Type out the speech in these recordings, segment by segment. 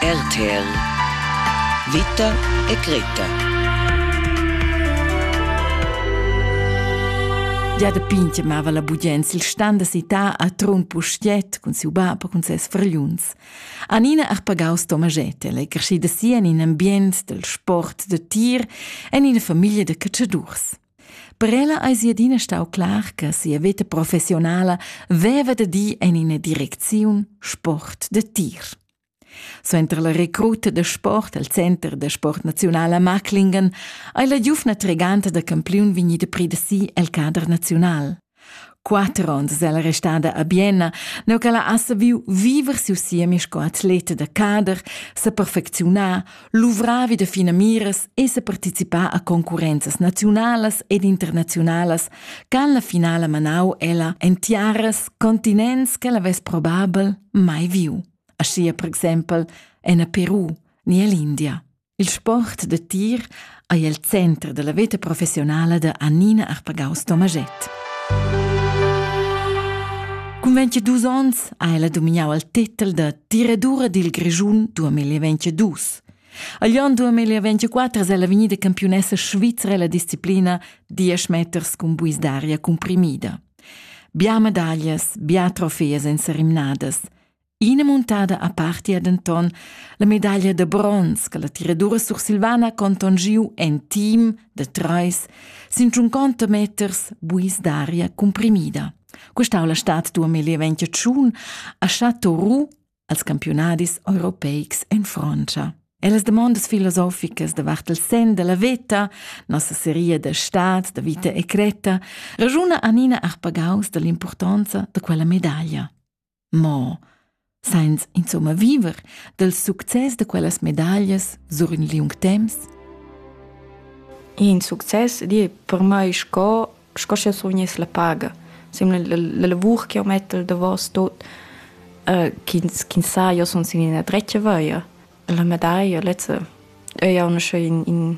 RTL Vita e Greta Gia da pintg mava la bugens il stand da cità a Trun Pustiet cun siu bab e cun ses fragliuns. Anina Arpagau Stomaget è crescida si en in ambient dal sport da tir en ina famiglia da catschadurs. Per ella eis ei adina stau clar che sia veta professionala veva da dir en ina direcziun sport da tir. Suenter la recruta da sport al Center da sport nazional a Maclingen ei la giuvna treganta da campiun vegnida predesì el cader nazional. Quatter onns ella restada a Bienna, neu ch'ella ha saviu viver siu siemi sco atleta da cader, seperfecziunar, luvrar vi da finamiras e separticipar a concurrenzas naziunalas ed internaziunalas ch'han la finala manau ella en tiaras continents ch'ella vess probabel mai viu, aschia per exempel en a Peru ni ell'India. Il sport da tir ei el center dalla veta professionala da Annina Arpagaus-Tomaschett. Cun 22 onns ha ella domignau il tetel da tiradura dil Grischun 2022. Agl onn 2024 è ella vegnida campiunessa svizra la disciplina 10 meters cun buis d'aria cumprimida. Bia medaglias, bia trofee senza rimnadas. Ina muntada apartia denton la medaglia da bronz che la tiradura sursilvana conton giu en team da treis sin tschunconta meters buis d'aria cumprimida. Questa la stat duamilli ventitschun a Chateau Roux als campionadis europeics en Francia. E las demandas filosoficas davart il sen della veta, nossa seria da stat, da vita e creta, ragiuna Anina Arpagaus dall'impurtonza da quella medaglia. Mo sainz insomma viver dals success da quellas medaglias sur ün liung temps? In success di per mai sco sco sch'eu survgness la paga. Simla la lavur ch'eu mett al davos tot, ch'ins ch'ins sa, io sun sin üna dretga via. La medaglia lezza ais auncha in in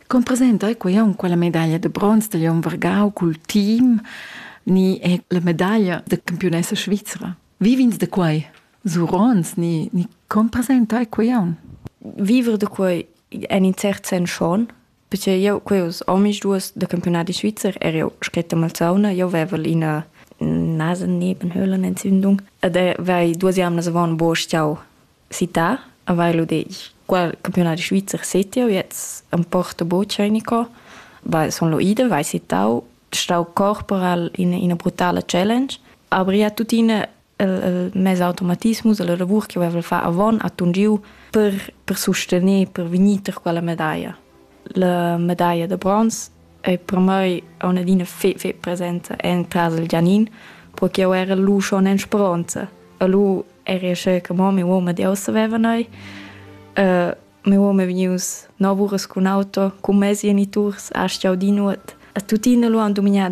Con presenta ei quei aunc quella medaglia de bronz dagl onn vargau cul team ni è la medaglia de campionessa svizra? Vivins de quei? Surons ni, ni con presenta ei quei aunc? Vivere de quei en in cert sen schon, perché io queus omis duas de campionati svizzer er io scritta malzauna, io vevel ina Nasen nebenhöhlen Entzündung ed er vai duas jamnas avon bo stiau città a vailo deich. Quel campiunat svizzer settiau jetzt am Porto Boccianico. Weil son lo ida, vai sittau, stau corporal in ina brutala challenge. Aber ja tuttina il, il mez automatismus e la lavur che avevo far avon a tun giu per, per sustener, per vegnir per quella medaglia. La medaglia da bronz ei per mei aunc adina fetg fetg presenta en casa del Gianin, perché eu era lu schon en speronza e lu eri ascè che mo mia uoma di ossa veva neu. mia uoma è vegnius nov uras cun auto, cun mes geniturs, astga audi nuot. E tuttina lu han dumignà da